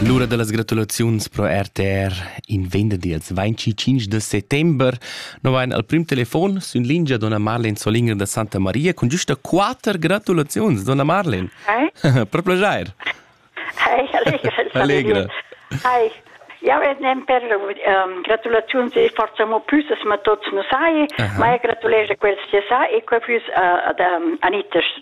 L'ura da las gratulaziuns pro RTR in venderdi als 25 de settembre no vain al prim telefon sün lingia donna Marlen Solinger da Santa Maria cun giusta quatter gratulaziuns. Donna Marlen, Hei. per plagier. Hei, allegra. allegra. Hei. Ja, wir nehmen per ähm, Gratulation si facciamo più ma tots noi sai, uh -huh. ma gratulejo quels che sai e quei più uh, ad um, Anita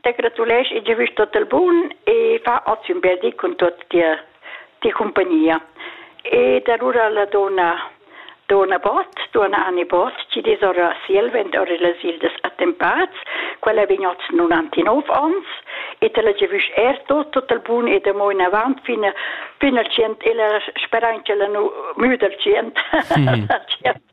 T'gratulesch e giavüsch tot il bun e fa hoz ün bel di cun tuot tia tia cumpagnia. Ed alura la donna donna Bott, donna Anne Bott, chi dis ora sielvend ora las ildas attempats, quella vegn hoz 99 ons e te la giavüsch er tot, tot il bun e da mo in avant fin, fin al tschient e la speranza la nu, mü dal tschient. Mm. tschient.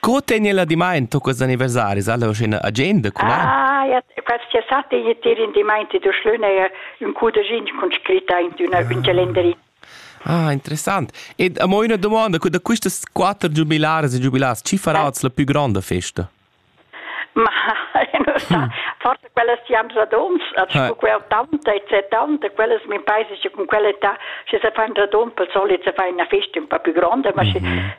Co tegn la dimaint tuccas anniversaris alla scena agenda cun ein? Ah, ja, quels che sa te jetir in dimaint du schlöne un cudegin con scritta in una un calendari. Ah, interessant. Ed amo una domanda, da quistas quatter giubilares e giubilars, chi farats la più grande festa? Ma non sa, hm. forse quelle siamo radons, also eh. con quel tanta e tanta, quelle mi paese che con quelle ta, se se fanno radon, per solito se fai una festa un po' più grande, ma mm -hmm. se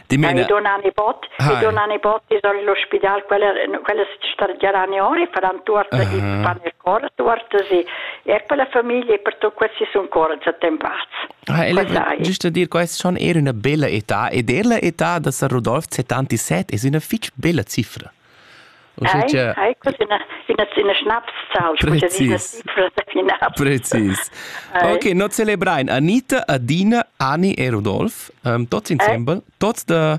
Dimena. Mi dona ne bot, mi dona ne bot is all l'ospidal quella quella sta giara ne ore faran tuort uh -huh. fan il cor tuort si e per la famiglia per tu questi sun cor attempats. Ah, ele giusto dir quest schon era una bella età ed er la età da Sir Rodolf 77 es una fitch bella cifra. Uschia... Hai, hai, ina, ina schnaps sau. Precis. Precis. Ok, noi celebrain Anita, Adina, Ani e Rudolf, um, tots insembel, tots de...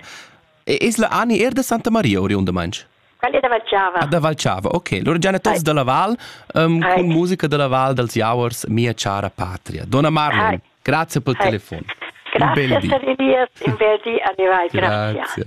Es la Ani er de Santa Maria oriunda manch? Qual è da Valciava? Ah, da Valciava, ok. Loro già tots de la Val, um, con musica della Val dels Jauers, mia cara patria. Donna Marlon, grazie per il telefono. Un bel dì. Grazie per il in bel dì, arrivai, grazie. grazie.